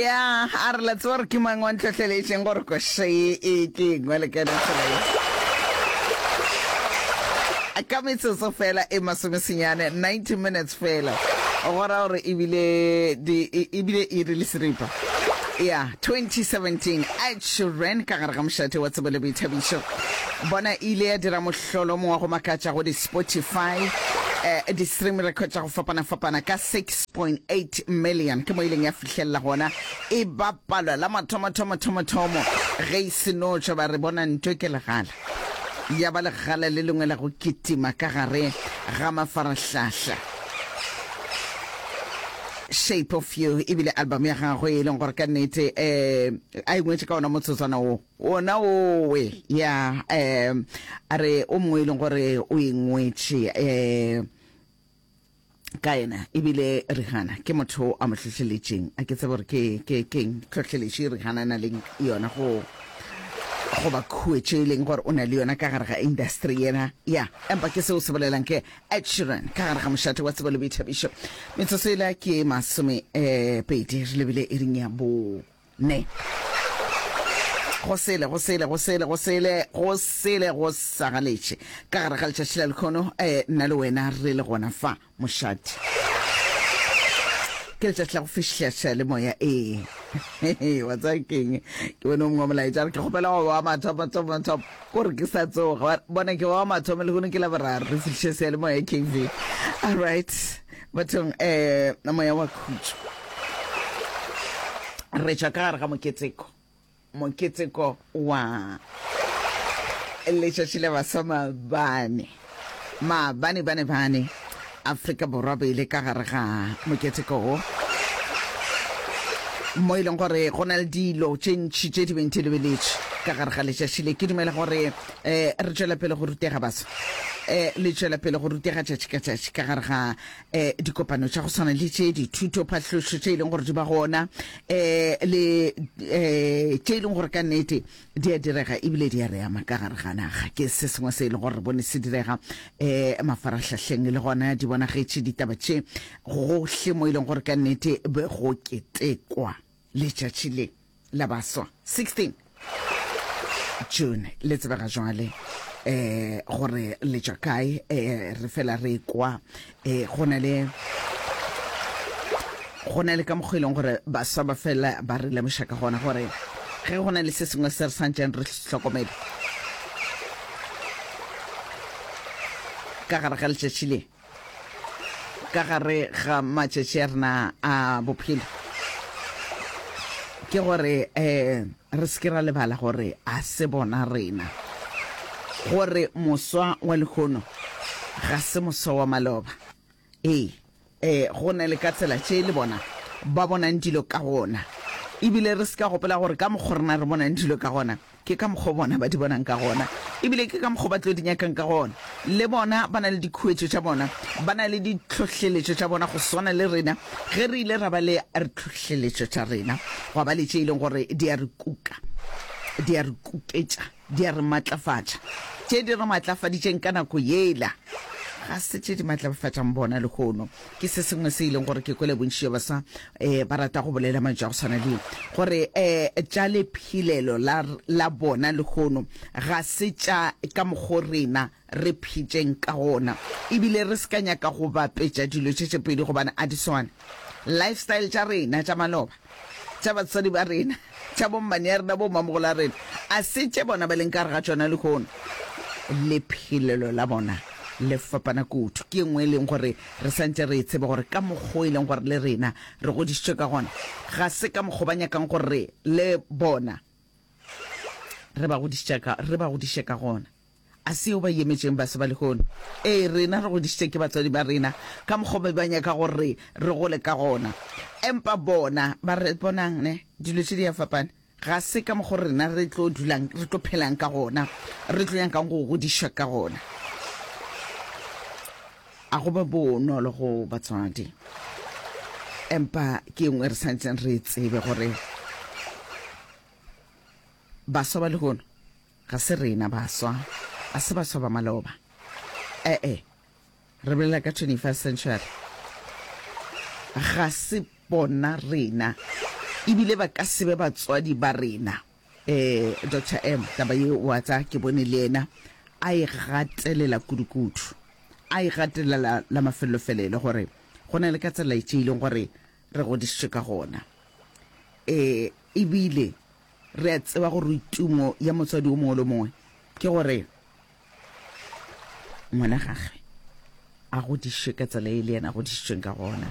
ya a re la tseba gore ke mang wa ntlhotlhelešeng gore koše e ke engwe le ka ntlhola ka metsotso fela e masomesenyane 90 minutes fela go ra gore ebile ebile e re le seripa ya 2017 ed sheeran ka gare ga mošate wa tsebo le boithabišo bona ile ya dira mohlolo mongwe go makatša go di-spotify eh, di-stream record tša go fapana-fapana ka 6 1.8 million ke mo ileng ya fihlelela gona e bapalwa la mathomathomathomothomo ge e senotšwa ba re bona ntwe ke legala ya ba legala le lengwe la go kitima ka gare ga mafarahlahla shape of you ebile album ya gagwe e leng gore ka nnete um a engwetse ka ona motsotswana o ona owe ya um a re o mongwe e leng gore o engwetse um ka yena ebile rihana ke motho a mo hlohleletšeng a ke tsebe gore ke ke keng tlhohleletše rihana na leng yona go goba khuetše e leng gore o na le yona ka gare ga industry yena ya empa ke seo se bolelang ke ed sheeran ka gare ga mošate wa tsebo le boithabišo metsotso ela ke masome um pedi re lebile e ring ya bo ne. Go sele, go sele, go sele, go sele, go sele go sa galetše ka gare ga letšatši la lekhono, eh, nna le wena re le gona fa, mošadi. Ke letšatši la go fihleša le moya, ee. Wa tsaya keng? Ke bone o mongwe wa molaetša re ke kgopela go wa mathomo, thomo, thomo, ko re ke sa tsoga. Bona ke wa mathomo le gone ke la boraro, re fihliše seya le moya, KV. All right. Bathong, um moya wa khutšo. Re tšwa ka gare ga moketeko, moketeko wa letšatši la baswa maabane. Maabane bane bane, Afrika Borwa be ile ka gare ga moketeko wo mo e leng gore go na le dilo tše ntši tše di beng di lebeletše ka gare ga letšatši le. Ke dumela gore eh re tšwela pele go rutega basa eh le tšwela pele go rutega tšatši ka tšatši ka gare ga eh dikopano tša go tshwana le tše dithuto phatlhošo tše e leng gore di ba gona eh le eh tše e leng gore ka nnete di a direga ebile di a re ama ka gare ga naga ke se sengwe se e leng gore re bone se direga eh mafarahlahleng le gona di bonagetše ditaba tše gohle mo e leng gore ka nnete be go ketekwa letšatši le la baswa 16 june le tsebega jwale eh gore le tšwa kae eh re fela re kwa eh go na le go na le ka mokgwa e leng gore baswa ba fela ba re lemoša ka gona gore ge go na le se sengwe se re santšeng re hlokomele ka gare ga letšatši le ka gare ga matšatši a rena a bophelo ke gore um re seke ra lebala gore a se bona rena gore moswa wa lekgono ga se moswa wa maloba ee um go na le ka tsela tše le bona ba bonang dilo ka gona ebile re se ka gopela gore ka mokgwa rena re bonang dilo ka gona Ke ka mokgwa wo bona ba di bonang ka gona, e bile ke ka mokgwa wo ba tlo di nyakang ka gona. Le bona ba na le dikhuetšo tša bona, ba na le ditlhohleletšo tša bona, go swana le rena ge re ile ra ba le rtlhohleletšo tša rena, gwa ba le tše e leng gore di a re kuka, di a re kupetša, di a re matlafatša. Tše di re matlafaditšeng ka nako yela ga se tše di matlafatšang bona lehono. ke se sengwe se e leng gore ke kwele bontši jwa basa um ba rata go bolela mantšu a go tshwana le gore um tša lephelelo la bona lehono ga se tša ka mokgo rena re phetšeng ka gona ebile re se ka nyaka go bapetša dilo tše tše pedi gobane a di swane lifestyle tša rena tša maloba tša batswadi ba rena, tša bommane ya rena, bommamogola ya rena, a se tše bona ba leng ka gare ga tšona lehono? Lephelelo la bona le fapana kudu. Ke engwe e leng gore re santše re e tseba gore ka mokgwa o e leng gore le rena re godišitšwe ka gona, ga se ka mokgwa ba nyakang gore le bona re ba godiše ka gona. A se o ba yemetšeng base ba lehono? Ee, rena re godišitše ke batswadi ba rena ka mokgwa o be ba nyaka gore re gole ka gona. Empa bona ba re, Bonang, ne, dilo tše di a fapana. Ga se ka mokgwa o rena re tlo dulang, re tlo phelang ka gona, re tlo nyakang go godišwa ka gona. A go ba bonolo go batswadi. Empa ke engwe re swanetseng re e tsebe gore baswa ba lehono Ga se rena baswa, a se baswa ba maloba. E-e, re bolela ka 21st century. Ga se bona rena, ebile ba ka se be batswadi ba rena. Eh, Doctor M, taba ye wa tsa ke bone le yena a e gatelela kudukudu. A e gatelela la mafelelo-felelo gore go na le ka tsela e tšeileng gore re godišitšwe ka gona. E, e bile re a tseba gore tumo ya motswadi wo mongwe le mongwe ke gore ngwana gagwe a godišwe ka tsela e le yena a godišitšweng ka gona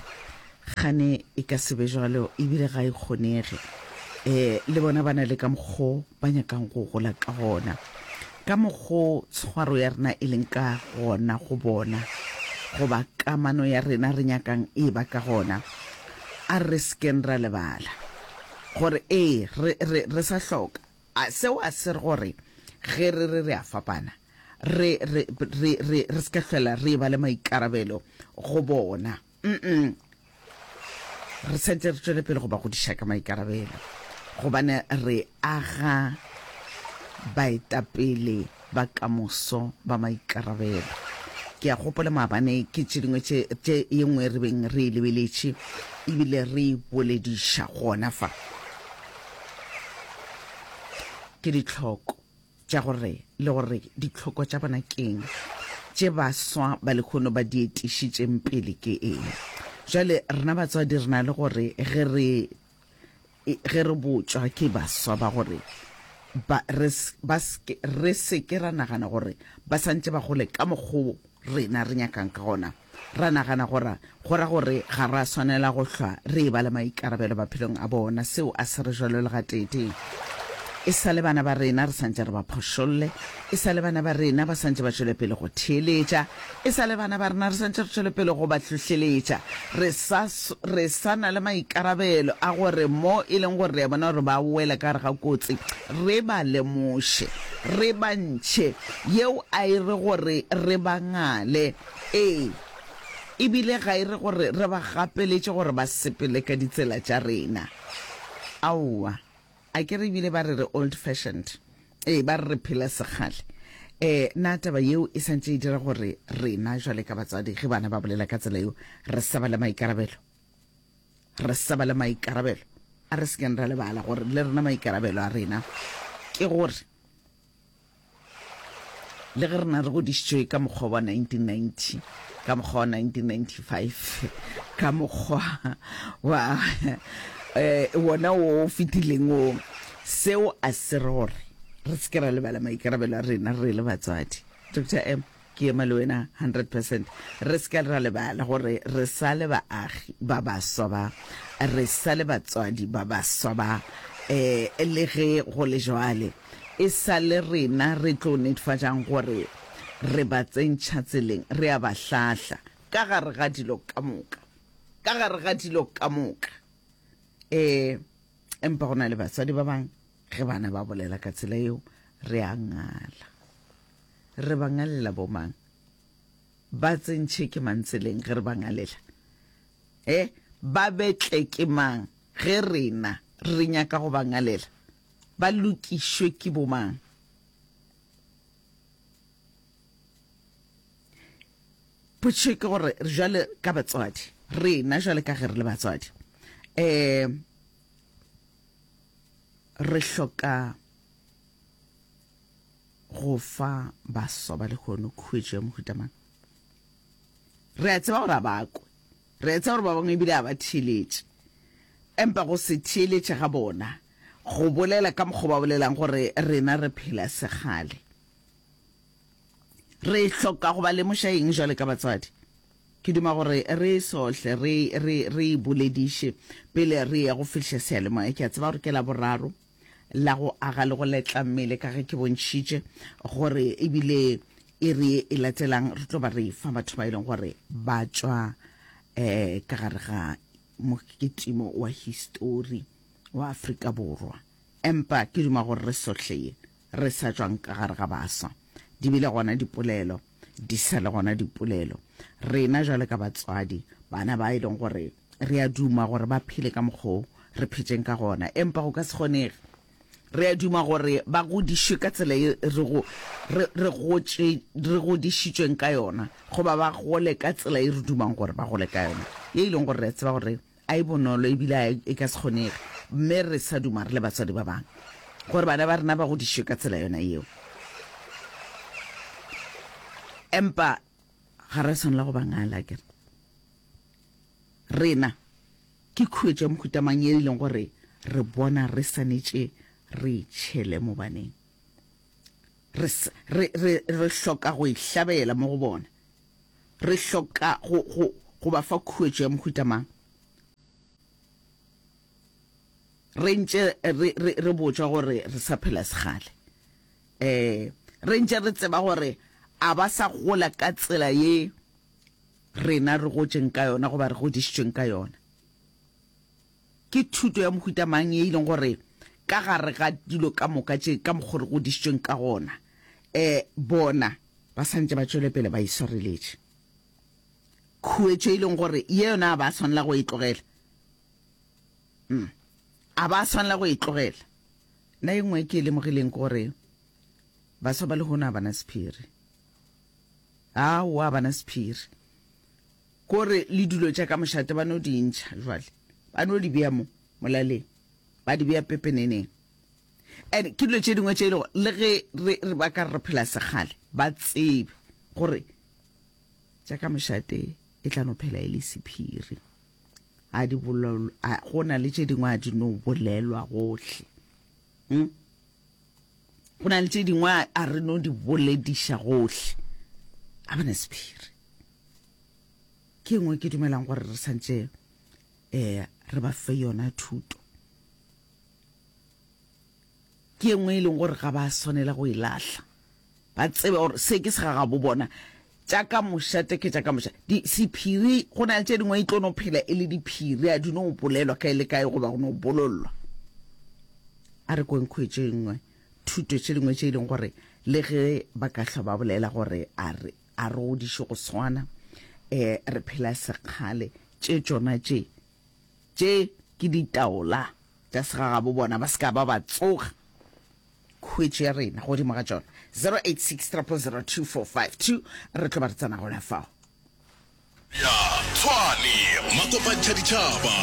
gane e ka sebe jalo ebile ga e kgonege um le bona ba na le ka mokgo ba nyakang go gola ka gona Ka mokgo tshwaro ya rena e leng ka gona go bona, goba kamano ya rena re nyakang e ba ka gona, a re se keng ra lebala gore, ee, re, re, re sa hloka. A seo a se re gore ge re re re a fapana, re, re, re, re, re se ka hlola re eba le maikarabelo go bona? mm re setse re tswele pele go ba godiša ka maikarabelo gobane re aga baetapele ba kamoso ba maikarabelo ke a gopola maabane ke tše dingwe tše ye nngwe re beng re e lebeletše ebile re e bolediša gona fa ke ditlhoko tša gore le gore ditlhoko tša bona ke'ng, tše baswa ba lekhono ba di etišitšeng pele ke eng. Bjale rena batswadi re na le gore ge re ge re botšwa ke baswa ba gore ba re ba re se ke ra nagana gore ba santše ba gole ka mokgwa rena re nyakang ka gona. Ra nagana gora, go ra gore ga ra swanela go hlwa re e-ba le maikarabelo maphelong a bona. Seo a se re jalo le gateetee. E sa le bana ba rena re sa ntše re ba phošolle, e sa le bana ba rena ba sa ntše ba tšwele pele go theeletša, e sa le bana ba rena re sa ntše re tšwele pele go ba hlohleletša, re sa, re sa na le maikarabelo a gore mo e leng gore re a bona gore ba wela ka gare ga kotsi, re ba lemoše, re ba ntšhe. Yeo a e re gore re ba ngale. Ee, e bile ga e re gore re ba gapeletše gore ba sepele ka ditsela tša rena. Aowa. A ke re e bile ba re re old-fashioned? Ee, ba re re phela sekgale. Ee, na taba yeo e santše e dira gore rena bjale ka batswadi, ge bana ba bolela ka tsela yeo, re sa ba le maikarabelo? Re sa ba le maikarabelo? A re se keng ra lebala gore le rena maikarabelo a rena ke gore Le ge rena re godišitšwe ka mokgwa wa 1990, ka mokgwa wa 1995, ka mokgwa wa eh, wona o fetileng o, seo a se re gore re se ke ra lebala maikarabelo a rena re le batswadi. Doctor M. Ke ema le wena hundred percent. Re se ka ra lebala gore re sa le baagi ba baswa ba, re sa le batswadi ba baswa ba, um le ge go le jwale e sa le rena re tlo netfatšang gore re ba tsentšha tseleng, re a ba hlahla ka gare ga dilo ka moka, ka gare ga dilo ka moka. Um empa go na le batswadi ba bang Ge bana ba bolela ka tsela yeo, re a ngala. Re ba ngalela bomang? Ba tsentšhe ke mang tseleng ge re ba ngalela? E, ba betle ke mang ge rena re nyaka go ba ngalela? Ba lokišwe ke bomang? Potšo ke gore, jwale ka batswadi, rena jwale ka ge re le batswadi, um re hloka go fa baswa ba lehono khuetšo ya mohutamana re a tseba gore a bakwe re a tseba gore ba bangwe ebile a ba theeletše empa go se theeletše ga bona go bolela ka mokgwa ba bolelang gore rena re phela segale re hloka go ba lemoša eng jwale ka batswadi Ke duma gore re esohle re, re, re e bolediše, pele re eya go fihla seyalemoya. Ke a tseba gore ke Laboraro, la go aga le go letla mmele, ka ge ke bontšhitše gore e bile iri ye e latelang re tlo ba re efa batho ba e leng gore ba tšwa um ka gare ga mokitimo wa histori wa Afrika Borwa. Empa ke duma gore re sohle ye re sa tšwang ka gare ga baswa, di bile gona dipolelo. di sa le gona dipolelo. Rena jwale ka batswadi, bana ba e leng gore re a duma gore ba phele ka mokgwa o re phetšeng ka gona, empa go ka se kgonege. Re a duma gore ba godišwe ka tsela e re go re re gotše re godišitšweng ka yona, goba ba gole ka tsela e re dumang gore ba gole ka yona, ye e leng gore re a tseba gore A e bonolo, e bile a e ka se kgonege mme re sa duma re le batswadi ba bangwe gore bana ba rena ba godišwe ka tsela yona yeo. Empa ga re swanela go ba ngala, ke re rena ke khuetšo ya mohuta mang ye e leng gore re bona re swanetše re itšhele mo baneng. Re, re, re, re hloka go e hlabela mo go bona. Re hloka go, go, go ba fa khuetšo ya mohuta mang? Re ntše re, re, re botšwa gore re sa phela segale. E, re ntše re tseba gore a ba sa gola ka tsela ye rena re gotšeng ka yona goba re godišitšweng ka yona. Ke thuto ya mohuta mang ye e leng gore ka gare ga dilo ka moka tše ka mokgwa re godišitšweng ka gona, um bona ba santše ba tšwele pele ba e swareletše? Khuetšo e leng gore ye yona a ba swanela go e tlogela, um a ba swanela go e tlogela. Na ye nngwe ke e lemogileng ke gore baswa ba lehono a bana sephiri, aowa a bana sephiri. Ko re le dilo tša ka mošate ba no di ntšha jwale, ba no di bea mo molaleng, ba di bea pepeneneng. And ke dilo tše dingwe tše e lego le ge re, re ba ka re phela sekgale, ba tsebe gore tša ka mošate e tla no phela e le sephiri. A di bolelwa, a go na le tše dingwe a di no bolelwa gohle. Hmm? go na le tše dingwe a re no di bolediša gohle a bana sephiri ke engwe ke dumelang gore re santse eh re ba fe yona thuto ke engwe e leng gore ga ba swanela go e lahla ba tsebe gore se ke segagabo bona tša ka moša teke tša ka moša sephiri go na le tše dingwe e tlo no phela e le diphiri a di no bolelwa ka e le kae goba go no bololwa a re kweng khwetše nngwe thuto tše dingwe tše e leng gore le ge ba ka hlwa ba bolela gore a re A re godiše go swana. E, re phela sekgale. Tše tšona tše, tše ke ditaola tša segagabo bona, ba se ka ba ba tsoga khwetši ya rena godimo ga tšona. 086 000 2452 re tlo ba re tsena gona fao. ya Tshwane makopantšha ditšhaba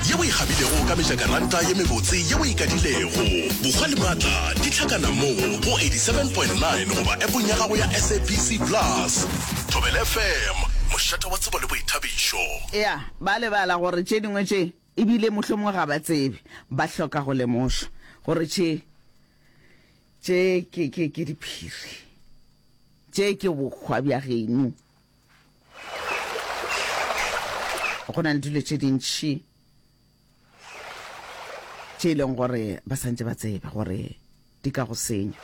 ye o e kgabilego ka mejakaranta ye mebotse ye o e kadilego. Bokgwa le maatla di hlakana mo go 87.9 goba appong ya gago ya SABC Plus. Thobela FM, mošate wa tsebo le boithabišo. Eya, ba lebala gore tše dingwe tše e bile mohlomongwe ga ba tsebe, ba hloka go lemošwa gore tše, tše ke, ke, ke diphiri. Tše ke bokgwa bja geno. go na le dilo tše dintšhi tše e leng gore ba santse ba tseba gore di ka go senya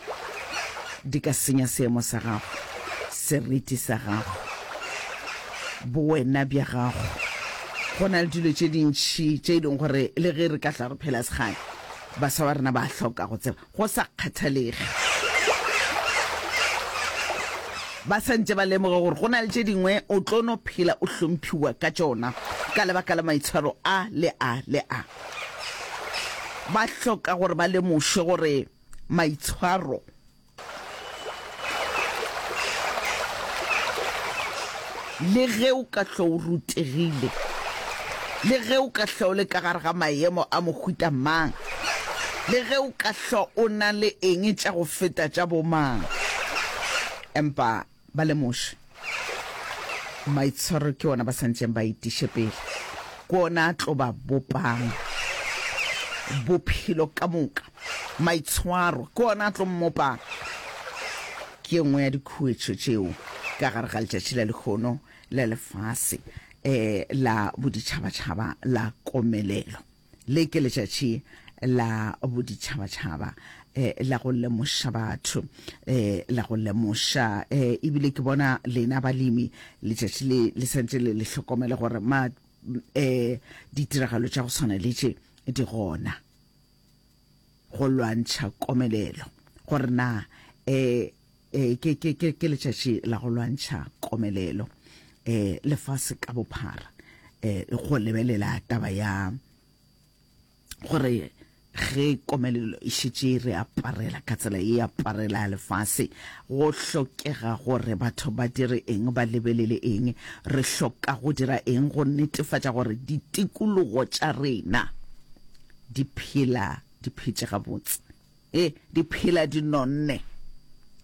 di ka senya seemo sa gago seriti sa gago bowena bja gago go na le dilo tše dintšhi tše e leng gore le ge re ka tla re phela segale baswa ba rena ba hloka go tseba go sa kgathalege ba sa ntše ba lemoga gore go na le tše dingwe o tlo no phela o hlomphiwa ka tšona ka lebaka la maitshwaro a le a le a. Ba hloka gore ba lemoše gore maitshwaro Le ge o ka hlwa o rutegile, le ge o ka hlwa o le ka gare ga maemo a mohuta mang, le ge o ka hlwa o na le eng tša go feta tša bomang, empa ba lemoše. Maitshwaro ke ona ba santšeng ba itiše pele ko ona a tlo ba bopang bophelo ka moka. Maitshwaro ke ona a tlo mmopang. Ke nngwe ya dikhuetšo tšeo ka gare ga letšatši la lekgono la lefase um la boditšhabatšhaba la komelelo. Le ke letšatši la boditšhabatšhaba eh, la go lemoša batho eh, la go lemoša eh, ebile ke bona lena balemi letšatši le le santse le le hlokomele gore ma eh, ditiragalo tša go tshwana le tše di gona go lwantšha komelelo, gore na e, e, ke, ke, ke, ke letšatši la go lwantšha komelelo e, lefase ka bophara, e, go lebelela taba ya gore ge komelelo e šetše re aparela ka tsela e aparela lefase go hlokega gore batho ba dire eng ba lebelele eng re hloka go dira eng go netefatša gore ditikologo tša rena Di phela di phetše gabotse. E, di phela di nonne.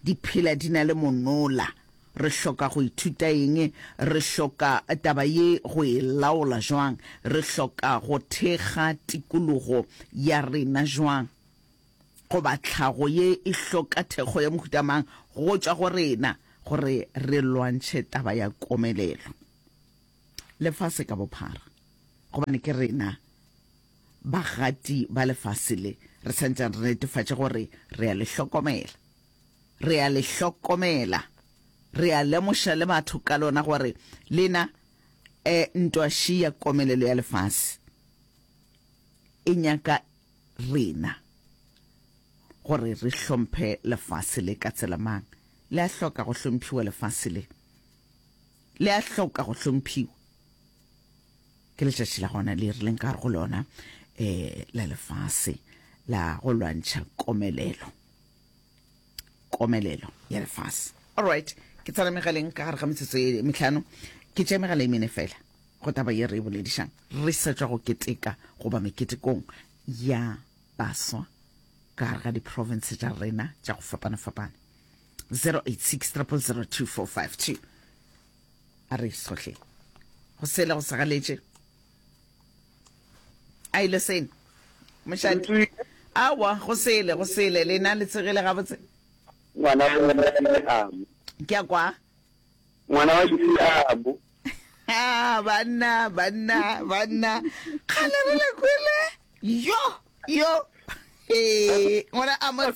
Di phela di na le monola. Re hloka go ithuta eng? Re hloka taba ye go e laola jwang? Re hloka go thekga tikologo ya rena jwang? Goba tlhago ye e hloka thekgo ya mohuta mang go tšwa go rena gore re lwantšhe taba ya komelelo? lefase ka bophara, gobane ke rena bagati ba lefase le, re santšang re netefatša gore re a le hlokomela. Re a le hlokomela, re a lemoša le batho ka lona gore lena e ntwa ši ya komelelo ya lefase e nyaka rena gore re hlomphe lefase le. Ka tsela mang le a hloka go hlomphiwa lefase le? le a hloka go hlomphiwa ke letšatši la gona le rileng ka go lona um la lefase la go lwantšha komelelo komelelo ya lefase all right ke tsena megaleng ka gare ga metsotso e metlhano ke tša megala e mene fela go taba ye re e boledišang re sa tšwa go keteka goba meketekong ya baswa ka gare ga diprovince tša rena tša go fapana-fapana 0860002452 a re sohle go sele go segaletše a ile sene mošate awa go sele go sele lena le tsegele gabotse ngwana wa lesile abo ke a kwa ngwana wa lesile abo ah, banna banna banna kgale re le kwele yo yo eh ngwana amos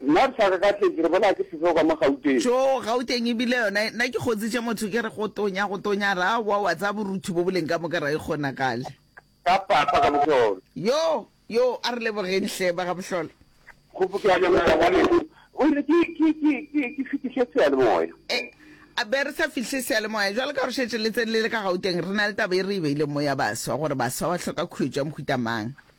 Nna re sa kakatletše, re bolaya ke sefeo ka mo Gauteng. Tjo, Gauteng e bile yona e, nna ke kgontšitše motho ke re go tonya, go tonya, a re aowa wa tsaya borutho bo boleng ka moka, ra e kgonagale. Ka papa ka bohlolo. Yo, yo, a re lebogeng hle, ba ga bohlolo. Kgopo ke a leboga ngwanešu. O ile, Ke, ke, ke, ke, ke fihliše seyalemoya. E, a be re sa fihle seyalemoya, jwalo ka gore šetše le tsenile le ka Gauteng, re na le taba e re e beileng mo ya baswa, gore baswa ba hloka khuetšo ya mohuta mang.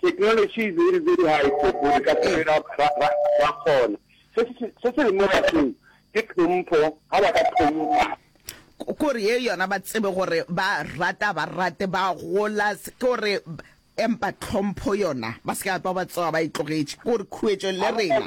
Theknolotši e diridze dihaephe gore ka se ra kgona. Se se leng mo bathong ke tlhompho, ga ba ka tlhompha. Ke gore ye yona ba tsebe gore ba rata ba rate ba gola, ke gore empa tlhompho yona ba se ka twa ba tsoga ba e tlogetše, ke gore khuetšo le rena.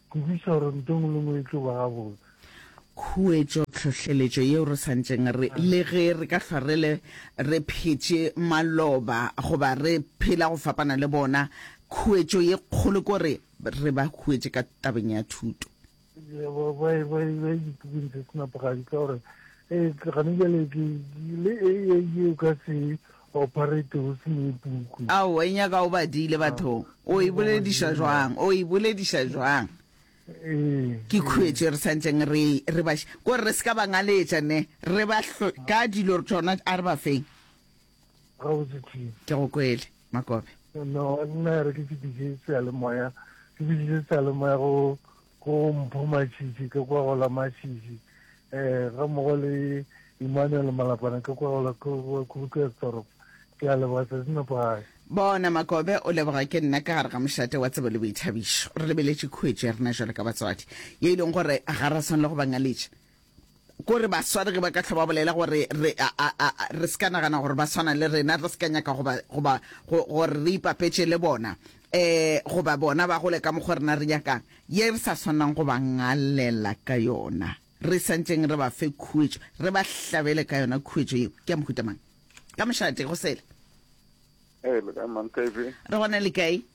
Kwešiša gore ntho engwe le ngwe e tlo ba gabotse. Khuetšo, tlhohleletšo yeo re santšeng re le ge re ka hlwa re le re phetše maloba goba re phela go fapana le bona, khuetšo ye kgolo ke gore re ba huetše ka tabeng ya thuto. Ba ba ba ba dipukung tse senapogadi ka gore e gane bjale ke le e e o ka se Operate go se ye puku. Ao, e nyaka o badile bathong. O e bolediša jwang? O e bolediša jwang? Ke khuetše re santšeng re, re ba, gore re se ka ba ngaletša, ne, re ba hlo, ka dilo tšona, a re ba feng. Gabotse, Tim. Ke go kwele, Makope. No, nna re ke fetiše seyalemoya, ke fetiše seyalemoya go, Go mpho matšitši ke kwa go la matšitši ga mmogo le Emmanuel Malapana ke kwa go la Krugersdorp. Ke a leboga, tšatši nepagale. Bona Makobe o leboga ke nna ka gare ga mošate wa tsebo le boithabišo. Re lebeletše khuetšo ya rena jwalo ka batswadi, ye e leng gore ga ra swanela go ba ngaletša. Ko re ba sware ge ba ka hlwa ba bolela gore re a, a, a, re se ka nagana gore ba swana le rena, re se ka nyaka goba, goba go, gore re ipapetše le bona, um goba bona ba gole ka mokgwa rena re nyakang, ye re sa swanang go ba ngalela ka yona, re sa ntšeng re ba fe khuetšo, re ba hlabele ka yona khuetšo yeo. Ke ya mohuta mang? Ka mošate, go sele. Ee, le kae, Mantaifi? Re gona le kae?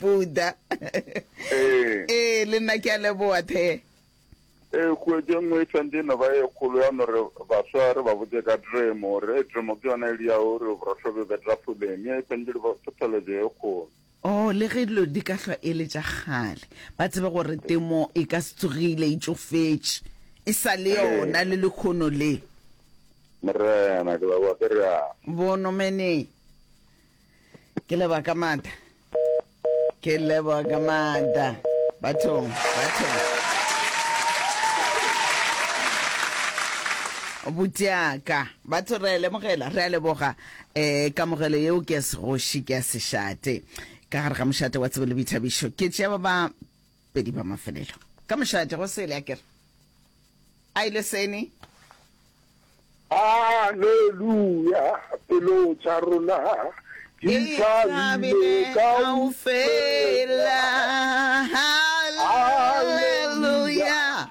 buda ee ee le nna ke a leboa the ee kuetše nngwe e tshwantse e no ba e kgolo ya no re baswa re ba botse ka dremo gore e dremo ke yona e le ya o re borosho be betra foleng e tshwantse le thotholetso e kgolo o oh, le ge dilo di ka hlwa e le tša gale ba tsebe gore temo e ka se tsogile e tšofetše e sa le yona le lekgono le morena ke ba wa ke rea bonomeneng ke leboga ka maata ke leboga ka maata bathong bathong butšeaka batho re a lemogela re a leboga um kamogelo yeo ke ya segoši ke ya sešate ka gare ga mošate wa tsebo le boithabišo ke tšea ba ba Pedi ba mafelelo. Ka mošate go sele a kere a ile sene. Aleluya, pelo tša rona di thabile kaufela. Aleluya,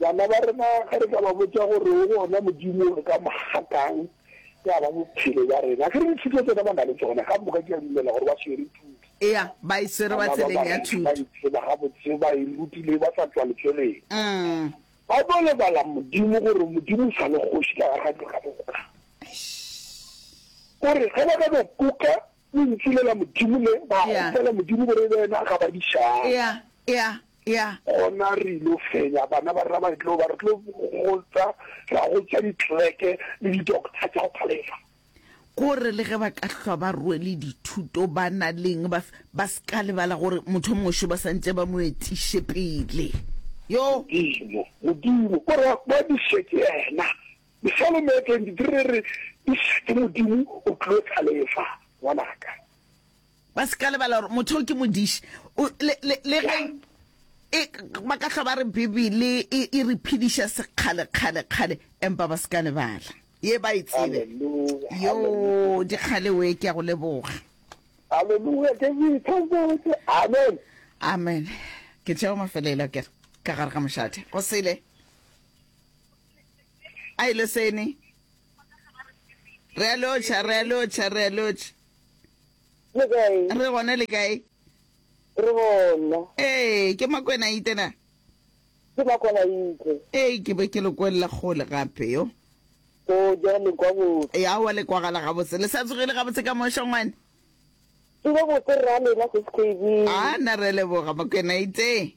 Bana ba rena ge re ka ba botša gore o gona Modimo re ka mo gatang ya ba bophelo ba rena. Ge re dithuto tsena ba na le tsona ka moka ke a dumela gore ba swere thuto. Eya, ba e swere ba tseleng ya thuto. Ba itseba gabotse ba e rutile ba sa tswa letšweleng. Mm. Ba tlo lebala Modimo gore Modimo o sa le kgoši ka gare ga dilo ka moka. Gore ge ba ka no kuka Lentšu le la Modimo le, ba kgopela Modimo gore e be yena a ka ba dišang. Gona re il'o fenya, bana ba rena ba tlo ba, re tlo go tsa, ra go tša ditleleke le didokta tša go phalefa. Gore le ge ba ka hlwa ba rwele dithuto, ba na le'ng, ba, ba se ka lebala gore mothomong šo ba santše ba mo etiše pele. Yo. Modimo, Modimo, ko re, ba diše ke yena, Psalm ya 23 e re, Eša ke Modimo, o tlo tlalefa, ngwanaka. Ba se ka lebala gore motho o ke modiši. Le ge e, ba ka hlwa ba re Bibele e, e re phediša sekgale, kgale, kgale, empa ba se ka lebala ye ba e tsebe. Yo, dikgale we, ke a go leboga. Haleluya, ke go ithokote. Amen. Amen. Ke tšeo mafelelo, ke re, ka gare ga mošate. Go sele. A e le sene. Re a lotšha, re a lotšha, re a lotšha. Le kae? Re gona le kae? Re gona. Ee, ke Makwena Ite na? Ke Makwena Ite. Ee, ke be ke le kwella kgole gape yo. O ja le kwa botse. Ya wa le kwagala gabotse. Le sa tsogile gabotse ka mo shongwane? Ke be botse rra lena se se A na re leboga Makwena Ite.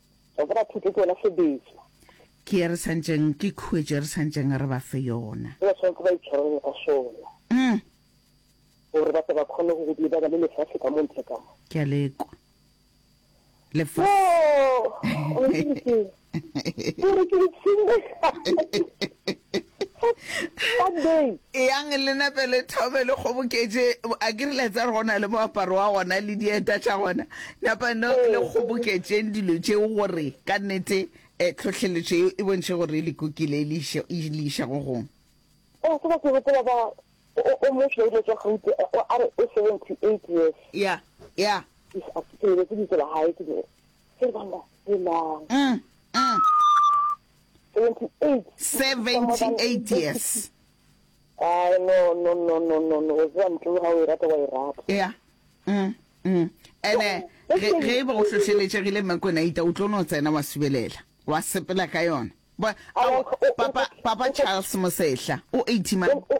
Wa tseba thuto ke yona sebetso. Ke ye re santšeng, ke khuetšo ye re santšeng re ba fe yona. Ba swanetse ba itshwarelele ka sona. Umm. Gore ba tle ba khone go lebana le lefase ka mo ntle ka mo. Ke a le kwa. Lefase. Yoo! Ke re ke itseng. yang le nape le thome le kgoboketše a ke rile tsa re go na le moaparo wa gona le dieta tša gona napa no le kgoboketšeng dilo tšeo gore ka nnete um tlhohleletšo eo e bontšhe gore e lekokile e le iša go gong o tseba ke gopola ba o motšwa ile tša gaute a re o seventy eight years ya ya ke lebetse ditso la gae ke dire se bana e mang 78 years Ai, no, no, no, no, no, no. O tseba ntlo ga o e rata, wa e rata. ya mm, mm. ene ge ge e be go hlohleletšegile mmekonaita o tlo no tsena wa subelela wa sepela ka yona Ba- Ao, ao, o- o- papa o- papa o- charles mosehla o 80 man o- o-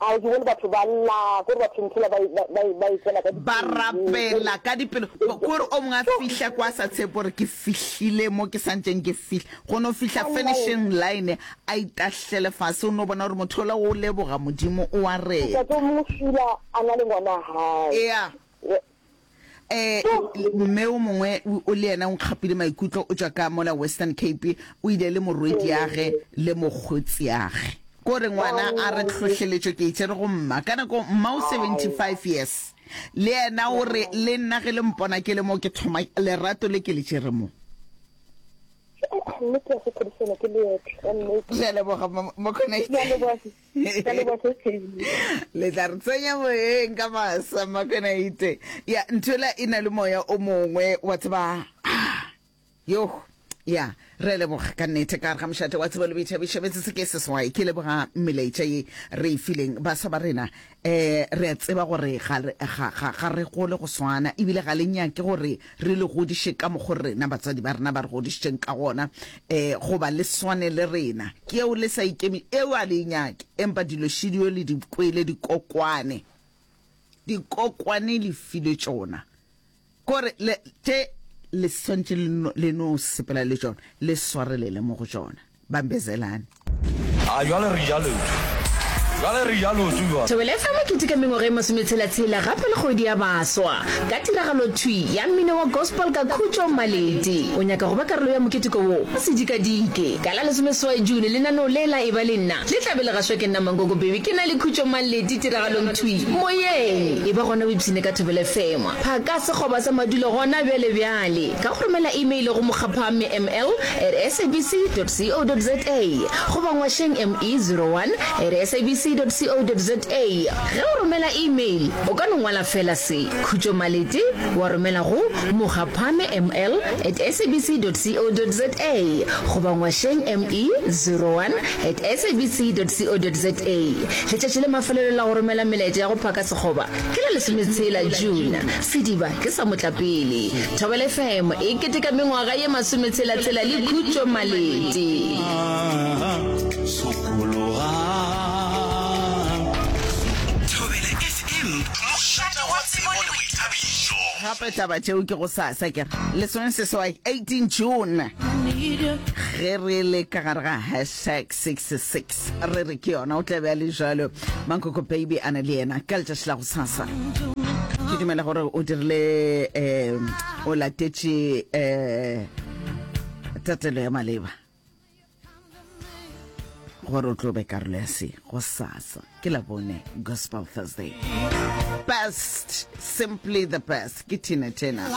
A o di bone batho ba lla, ko re ba phumphula ba, ba, ba, ba etšela ka dipelo. Ba rapela ka dipelo. Ko re o mongwe a fihla kwa sa tshepe gore ke fihlile mo ke santšeng ke fihla. Go no fihla finishing line a itahlele fase, o no bona gore motho ola o leboga Modimo, o a reta. Ntate o mongwe fula a na le ngwana hae. Ea. um mme o mongwe o le yena o nkgapile maikutlo o tšwa ka mola western cape o ile le morwediage le mokgotsiage ko re ngwana a re tlhohleletšo ke itšere go mma ka nako mma o 75 years le yena o re le nna ge le mpona ke le mo ke thoma lerato le ke le tšere mo ke a go phodišela ke leetle ka nnete. Ke a leboga mokgona. Ke a leboga. le tla re tsenya moyeng ka masa makenaite ya nthwela e na le moya o mongwe wa tseba ah, yo ya re leboga ka nnete ka re ga mošate wa tsebo le boitšhabišabetse se ke seswai ke leboga mmelaetša ye re e fileng baswa ba rena Ee, re a tseba gore ga re, ga, ga, ga re gole go swana, ebile ga le nyake gore re le godiše ka mokgo rena batswadi ba rena ba re godišitšeng ka gona, ee, goba le swane le rena. Ke eo le sa ikemi, eo a le e nyake. Empa dilo šidio le di kwele, dikokwane, dikokwane le file tšona. Gore le, tše le swantše le no, le no sepela le tšona, le swarelele mo go tšona. Bambezelani. A jwale re ja lotho. Jwale re ja lotho jwale. Thobela FM e keteka mengwaga e masometshela-tshela gape le kgwedi ya baswa ka tiragalo thwi ya mmino wa gospel ka Khutšo Maleti. O nyaka go ba karolo ya moketeko wo? O se dikadike. Ka la lesomeseswai June, lenaneo le la Eba le Nna le tla be le gašwa ke nna Mankoko Bhebhi ke na le Khutšo Maleti tiragalong thwi moyeng. Eba gona o ipshine ka Thobela FM. Phaka sekgoba sa madulo gona bjale bjale ka go romela imeile go mokgaphamme ml at sabc dot co dot za goba ngwašeng ME zero one at sabc dot co dot za. Ge o romela imeile, o ka no ngwala feela se, Khutšo Malete, wa romela go mokgaphamme ml at sabc dot co dot za goba ngwašeng ME zero one at sabc dot co dot za. Letšatši la mafelelo la go romela melaetša ya go phaka sekgoba Ke la lesometshela June, sediba ke sa motlapele. Thobela FM e keteka mengwaga ye masometshela-tshela le Khutšo Malete. Thobela FM, mošate wa tsebo le boithabišo. Gape taba tšeo ke go sasa ke re lesomeseswai 18 June ge re le ka gare ga hashtag 66 re re ke yona o tla be a le jalo mankoko baby a na le yena ka letšatši la go sasa ke dumela gore o dirile um o latetše um tatelo ya maleba gore o tlo be karolo ya se go sasa ke la bone gospel thursday best simply the best ke tina tena